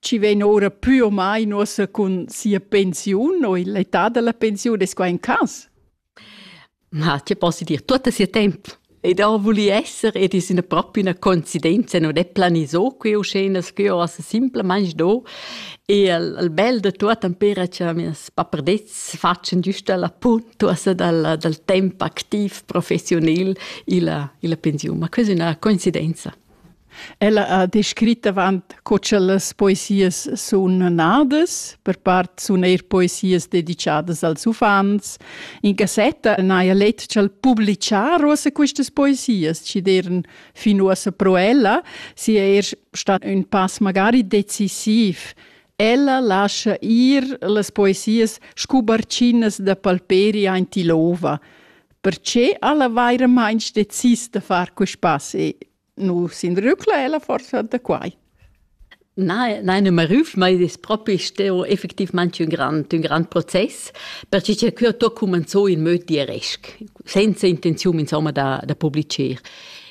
chi vegn ora pü o mai nossa cun sia pensiun o l'età da la pensiun, es quai un cas? Ma ti posso dir tutto sia tempo. Ed ho voli esser ed es üna propria üna coincidenza, non è planiso qui uscenas que o simplemente do. E il, il bel de tutto impera che mes papardets faccian giusto la puntuosa dal, dal tempo activ professional illa, illa pensiun. Ma questa è una coincidenza. Ella ha descrit avant co cha las poesias sun nadas, per part sun eir poesias dedichadas als uffants. In cassetta n'haja let cha'l publichar uossa quistas poesias, chi d'eiran fin uossa pro ella, sia eir stat ün pass magari decisiv. Ella lascha ir las poesias scu barchinas da palperi aint ill'ouva. Perche ella vairamaing decis da far quist pass e nu s'inrücla ella forsa da quai? Nein, nein, non me rüf, ma id es propi steo effectivmaing ün grand, ün grand process, perche cha que ho to cumanzò in möd diresc, senza intenziun insomma da, da publicher.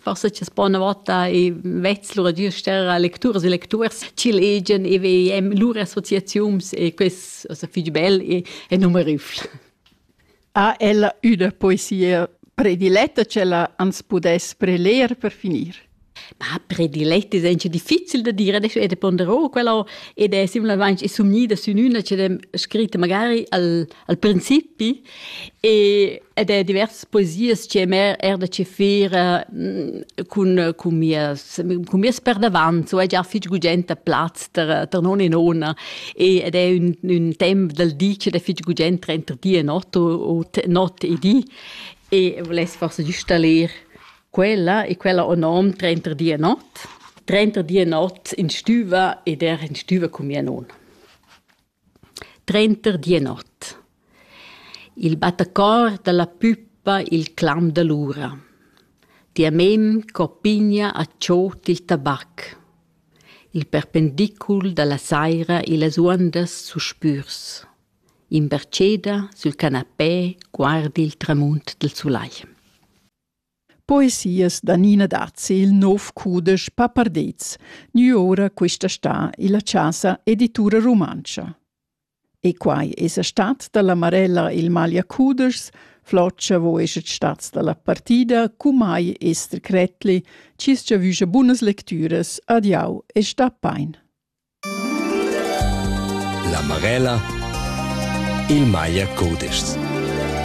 forse ci sta una volta e vezzlura giuster a lecturas e lecturs ch'il egen e vem lur associaziums e quest also fich bel e, e numerus. Ha ella üna poesia prediletta c'ella ans pudess preler per finir? Ma prediletta è anche difficile da dire, adesso è de ponderò quella ed è similmente è sumnida su una che è scritta magari al, al principi e ed è diversas poesias che mer er da chefir eh, cun cun mias cun mias perdavant so è già fich gugent a plaz ter ter non e nona e ed è un un temp dal di che è fich gugent trenta di e not o not e di e voless forse giusta ler quella e quella o nom 30 di e not 30 di e not in stüva ed er in stüva cun mia nona Trenter Dienot. Il battacor dalla puppa il clam dall'ura. Tia mem co pigna a tschot il tabac. Il perpendicul dalla saira e las uondas suspürs. In berceda sül canapé guardi il tramunt del sulai. Poesias da Nina Dazzi il nov cudesch Papardets, gnü oura quista stà illa Chasa Editura Rumantscha. E quai esa stat da la Marella il magliacudeschs, Floccia vo eschet stats da la partida cumai Esther Kretli, chi's giavüscha bunas lectüras, adiau e sta pain. La Marella il maglia cudeschs.